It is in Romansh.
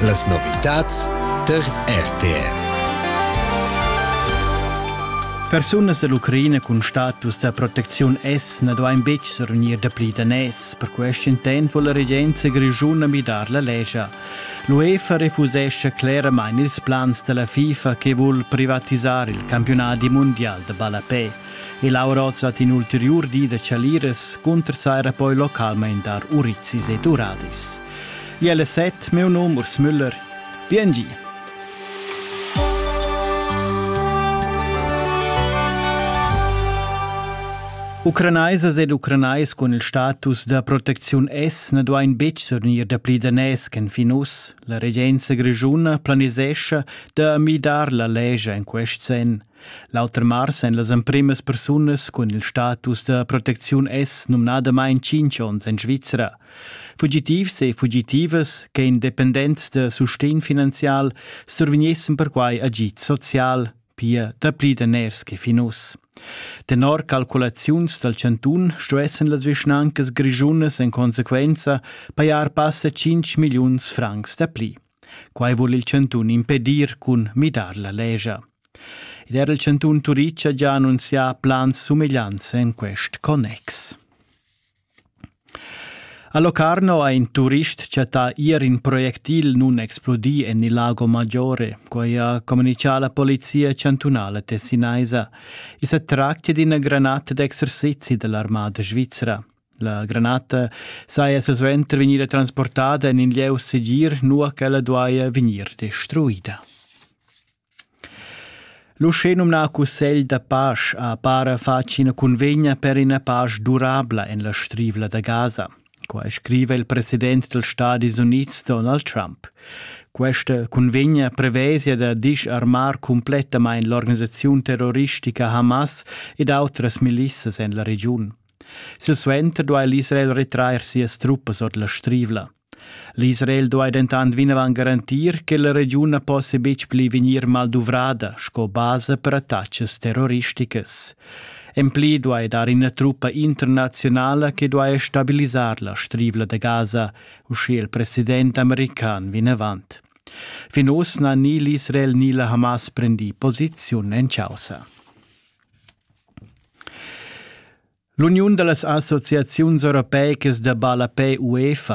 Las novitads tar RTR. Persunas dall'Ucraina cun status da protecziun S na duain betg survegnir dapli daners. Per quest intent vuol la regenza grischuna midar la lescha. L'UEFA refusescha cleramain ils plans da la FIFA che vul privatisar il campionadi mundial da ballapè. e Laura hoz dat in ulteriur di da chaliras cuntersaira poi localmaing dar urizis ed uradis. Jelle set, meu num Urs Müller. Biengi! Ucranaisas ed ucranais cun il status da protecziun S na duain betg sornir dapli daners ch'en fin uss. La regenza grischuna planisescha da midar la lescha en quest senn. L'auter mars èn las emprimas persunas cun il status da protecziun S numnadamain tschintg onns en Svizra. Fugitivs e fugitivas che independents da sustegn finanzial survegnessen perquai agid social, pia dapli daners che fin uss. Tenor calculaziuns dal chantun stuessen las vischnancas grischunas en consequenza pajar passa 5 milliuns francs dapli. Quai vul il chantun impedir cun midar la legia. Ed era il chantun Turic ha già annunzià plans sumegliants en quest connex. A Locarno ha in turist chattà ier in projectil nun explodì en il Lago Maggiore, quai ha communichà la polizia chantunala tessinaisa. I sa tractia d'ina granata d'exercizi da l'armada svizra. La granata saja silsuenter vegnida transportada en in lieu segir, nua ch'ella duaja vegnir destruida. L'uschenumnà cussegl da pasch ha para fatg ina cunvegna per ina pasch durabla en la strivla da Gaza. Quai scriva il president dals Stadis Unids Donald Trump. Questa cunvegna prevesia da disarmar cumplettamain l'organisaziun terroristica Hamas ed autras milissas en la regiun. Silsuenter duai l'Israel retrair sias truppas ord la strivla. L'Israel duai dentant vinavant garantir che la regiun na possia betg pli vegnir malduvrada sco basa per attacas terroristicas. En pli duai dar ina truppa internazionala che duai stabilisar la strivla da Gaza, uschia il president american vinavant. Fin uss n'ha ni l'Israel ni la Hamas prendì posiziun en causa. L'uniun da las associaziuns europeicas da ballapè UEFA